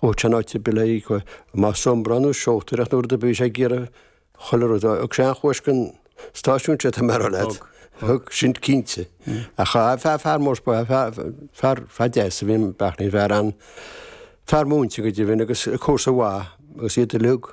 Chomh tionóite bile í, chomh más siombra nó seolta nuair a bhí sé ag iarraidh chuile rud a fháil. Thug sé an chúis don stáisiún sé, tá mé a rá leat. Thug. Sin cinnte. Ach cha rabh fear, fear mór spáis, fear, fear deas a bhí in Beachlaín, fear, an-fhear múinte go deimhin agus comharsa mhaith agus iad uilig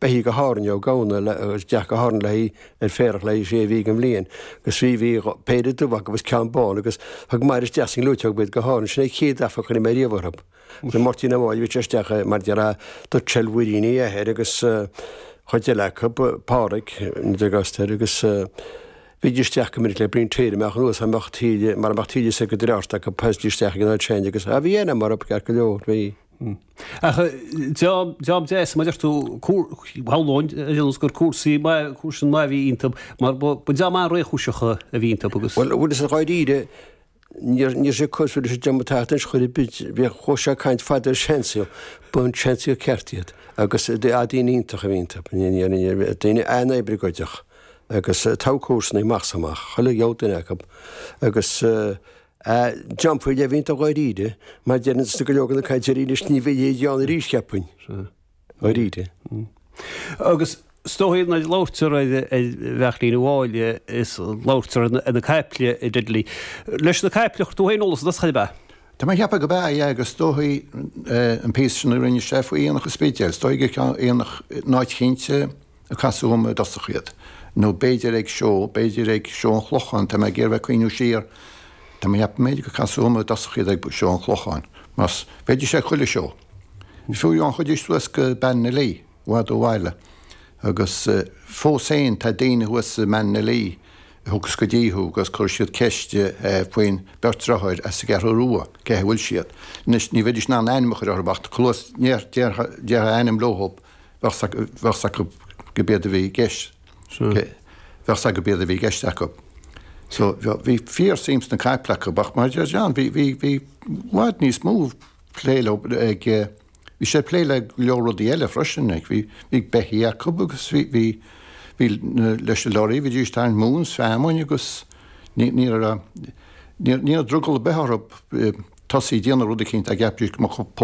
Beithígh go hÁrainn Ó Gamhna le agus death go hÁrainn léi ar féarach le haghaidh sé mhí den bhliain agus trí mhí dho péire dubh acu agus ceann bán agus thug Máire isteach sa ngleoiteog iad go hÁrainn. Sin é an chéad aithne a chuir mé riamh orthu. Bhí Máirtín Ó Máille ag itear isteach é mar deartha do Chell Mhuiríní a athair agus chuid eile acu, Pádraig, an Degastair, agus bhídís isteach go minic le bliain téir a mbeadh anuas a mbeadh Taoille mar a mbeadh Taoille is ag go dtreabhart acu, poislí isteach ag an oileán agus, ah bhí aithne a'm orthu, ceart go leor, bhí. Ach dream deas, mar a deir tú, bheadh lóin a dhéanamh gur comharsain mhaith a bhí iontu, mar ba dream maith réchúiseacha a bhí iontu agus. Bhuel, bhfuil a fhios a'd dháiríre, ní raibh sé cosúil leis an dream atá anois chor ar bith, bhíodh chomh sean caint fada ar seansaí, ba seanchaí go ceart iad agus daoine iontach a bhí iontu, daoine an-oibrí go deo agus togha comharsana amach is amach, chuile dhiabhal duine acu agus. a dhéanfar le blianta dháiríre, mar deireann sna go leor de na carachtair anois ní bheidh siad ann arís, cheapfainn, dháiríre. Agus is dóichí nuair a labhraítear ar Bheachlaín Uí Mháille is labhraítear ar na caiple i Diddley. Leis na caiple a chuir tú féin eolas agat, chaill ab ea? Tá mé a cheapadh go b'ea, aye, agus is dóichí an píosa sin a rinne sé faoi Aonach an Spidéil, is dóichí gurb é an tAonach, an áit chinnte, a casadh liom i dtosach iad, nó b'fhéidir ag seó, b'fhéidir ag Seó an Chlocháin, tá mé ag iarraidh cuimhneamh siar, tá mé a cheapadh, b'fhéidir gur casadh liom i dtosach iad ag Seó an Chlocháin, mar bhíodh sé ag chuile seó. Fiú amháin chuaidís suas go Ballinalee, i bhfad ó bhaile, agus fós féin tá daoine thuas i mBallinalee a thagas go dtí thú agus cuirfidh siad ceist faoin bheirt driotháir as an gCeathrú Rua, cén chaoi a bhfuil siad. Anois, ní bheidís in ann ainm a chur orthub ach chomh luath is a déarfá ainm leothub. Bheadh 's acu go b'iad a bhí i gceist. Bheadh 's acu go b'iad a bhí i gceist acu. So, bhí fíor-suim sna caiple acu ach, mar a deir John, bhí, bhí, bhí i bhfad níos mó plé leo ag, bhí sé ag plé le go leor rudaí eile freisin, like, bhí, bhí beithí acu agus bhí, bhí, bhí na, leis na lorraí, bhídís ag tarraingt móin is feamainn agus ní, ní raibh, ní raibh drogall ar bith orthu tosaí a déanamh rud eicínt a gceapfaidís go mbeadh